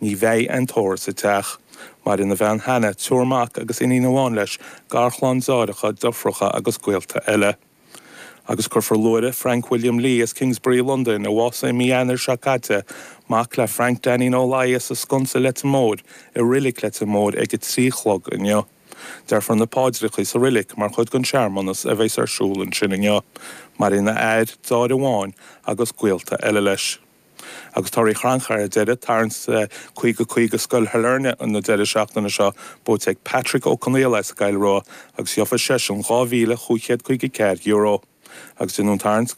Ní bheidh aon tórramh sa teach. Maireann a bhean Hannah, triúr mac agus iníon amháin leis, garchlann deartháireacha, driofúracha agus gaolta eile. Agus cuirfear luaithre Frank William Lee as Kingsbury, Londain, a bhásaigh i mí Eanáir seo caite, mac le Frank Dainín Ó Laidhe sa sconsa Leitir Móir i Reilig Leitir Móir ag a trí a chlog inniu. Déarfar na páidreacha sa reilig mar chuid den searmanas a bheas ar siúl ansin inniu. Maireann a athair, deartháir amháin agus gaolta eile leis. Agus torthaí chrannchuir ar deireadh, tarraingt 50 50 Scoil Shailearna an deireadh seachtaine seo, buaite ag Patrick Ó Conaola as Gaillimh agus gheofa seisean dhá mhíle, chúig chéad caoga a ceathair euro. Agus déanadh tarraingt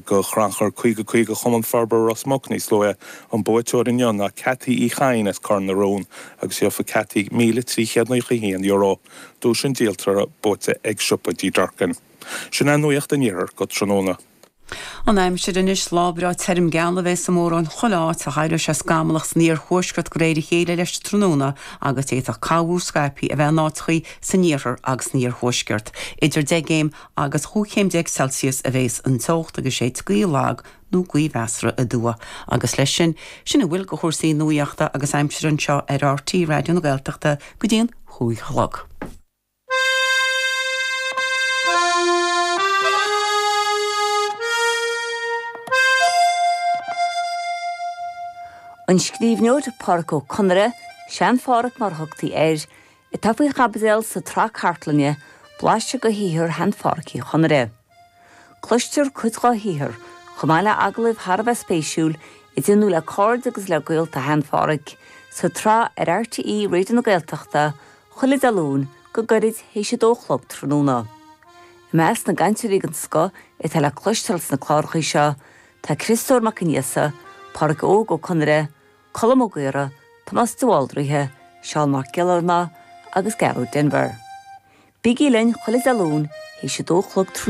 go chrannchur 50 50 Chumann Forbartha Ros Muc níos luaithe, an buaiteoir inniu ná Cathy Uí Chadhain as Cor na Rón agus gheofa Cathy míle, trí chéad nócha a haon euro. Duais an díoltora, buaite ag Siopa Dee Durkin. Sin é nuaíocht an iarthair go tráthnóna. An aimsir anois, lá breá tirim geal a bheidh sa mórán chuile áit ach éireoidh sé scamallach san iarthuaisceart de réir a chéile leis an tráthnóna agus d'fhéadfadh corrmhúr scaipthe a bheith in áiteachaí san iarthar agus san iarthuaisceart. Idir deich gcéim agus dhá chéim déag Celsius a bheas an teocht agus is gaoth lag nó gaoth mheasartha aduaidh. Agus leis sin, sin a bhfuil de chúrsaí nuaíochta agus aimsire anseo ar RTÉ Raidió na Gaeltachta go dtí an cúig a chlog. An scríbhneoir Pádraic Ó Conaire, Sean-Phádraic mar a thugtaí air, atá faoi chaibidil sa tsraith cartlainne Blaiseadh de shaothar Shean-Phádraic Uí Chonaire. Cloistear cuid dá shaothar, chomh maith le hagallaimh thar a bheith spéisiúil, a déanadh le cairde agus le gaolta Shean Pháraic, sa tsraith ar RTÉ Raidió na Gaeltachta, chuile Dé Luain, go gairid théis a dó a chlog tráthnóna. I measc na gcainteoirí den scoth atá le cloisteáil sna cláracha seo, tá Criostóir Mac Aonghusa, Páraic Óg Ó Conaire, Colm Ó Gaora, Tomás de Bhaldraithe, Seán Mac Giollarnáth agus Gearóid Denvir. Bígí linn chuile Dé Luain, théis a dó a chlog